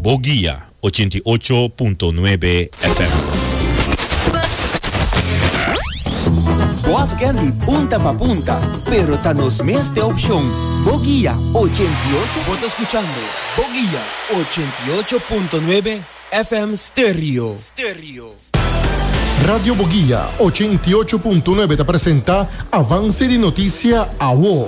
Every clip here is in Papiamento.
Bo guia ochenta i ocho punto nuebe FM. Bos ken di punta pa punta, pero ta nos mes te opcion Bo guia ochenta i ocho. Bo ta scuchando Bo guia ochenta i ocho punto nuebe FM Stereo. Radio Bo guia ochenta i ocho punto nuebe ta presenta Avance di noticia awo.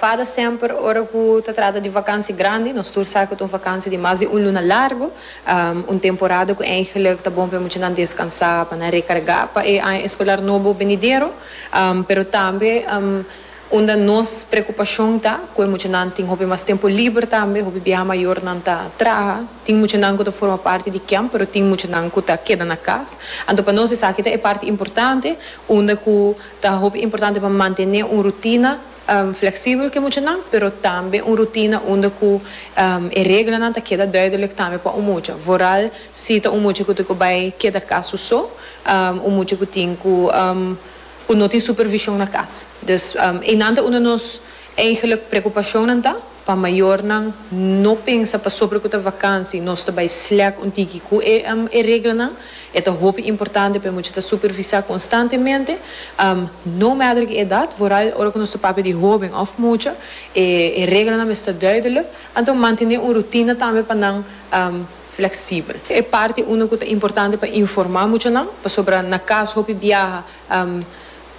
Fada semper ora ku ta trata di vakansi grandi, nos tur sa ku ta un vakansi di mas di un luna largu, un temporada ku eigenlik ta bon pa e muchanan deskansá, pa nan rekargá pa e aña eskolar nobo benidero, pero tambe unda nos preokupashon ta ku e muchanan tin hopi mas tempu liber tambe, hopi biaha mayornan ta traha, tin muchanan ku ta forma parti di kemp pero tin muchanan ku ta keda na kas, anto pa nos esaki ta e parti importante unda ku ta hopi importante pa mantené un rutina. Fleksibel ku e muchanan, pero tambe un rutina unda ku e reglanan ta keda duidelek tambe pa un mucha. Vooral si ta un mucha ku ta ku bai keda kas su so, un mucha ku tin ku ku no tin supervishon na kas. Dus einan ta un di nos eigenlik preokupashonnan ta. Pa mayornan no pensa pasobra cu ta vakansi nos ta bay sleck un tiki cu e reglanan. E ta hopi importante pa e mucha ta supervisa constantemente. No matter ki edad, vooral ora cu nos ta papia di hoben of mucha, e reglanan mester duidelijk. Anto mantene un rutina tambe pa nan flexibel. E parti uno cu ta importante pa informa muchanan pasobra na cas hopi biaha.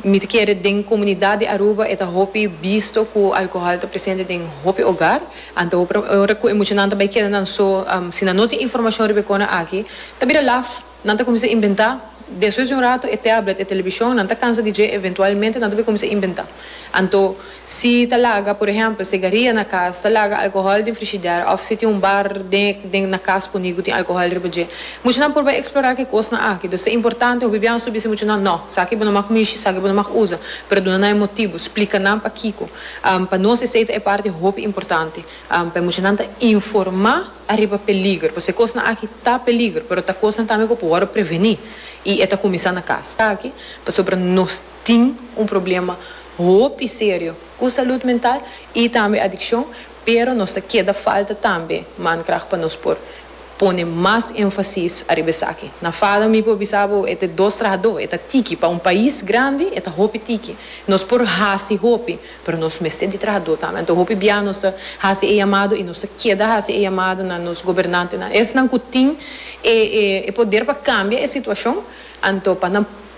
Mi ta kere den komunidat di Aruba e ta hopi bisto ku alkohòl ta presente den hopi ogar. Anto hopi ta ora ku e muchanan ta bai keda nan so. Si nan no tin informashon riba e kona aki ta bira laf. Nan ta kuminsá inventá. Despues di un ratu e tèblet, e televishon, nan ta kansa di dje. Eventualmente nan ta bai kuminsá inventá. Anto Si ta laga, por ehempel, segaria na cas, ta laga alcohol den frishider of si tin un bar den den na cas puni cu tin alcohol riba dje. Muchanan por bai explora ki cosnan aki. Dos ta importante hopi biaha su bisa muchanan, No, saki bo no mag mishi, saki bo no mag usa. Pero duna nan e motibu, splica nan pakico. Pa nos esey ta e parti hopi importante. Pa e muchanan ta informa ariba peliger. Pasobra e cosnan aki ta peliger, pero ta cosnan tambe cu por worde preveni. Y e ta cuminsa na cas. Taki pasobra nos. tin un problema hopi serio cu salud mental y tambe adiccion, pero nos ta keda falta tambe mankracht pa nos por pone mas enfasis ariba esaki. Na Fado mi por bisa bo e ta e dos trahador, e ta tiki, pa un pais grandi e ta hopi tiki. Nos por haci hopi, pero nos mester di trahador tambe. Anto hopi bia nos ta haci e yamado y nos ta keda haci e yamado na nos gobernantenan, esnan cu tin e poder pa cambia e situacion, anto pa nan.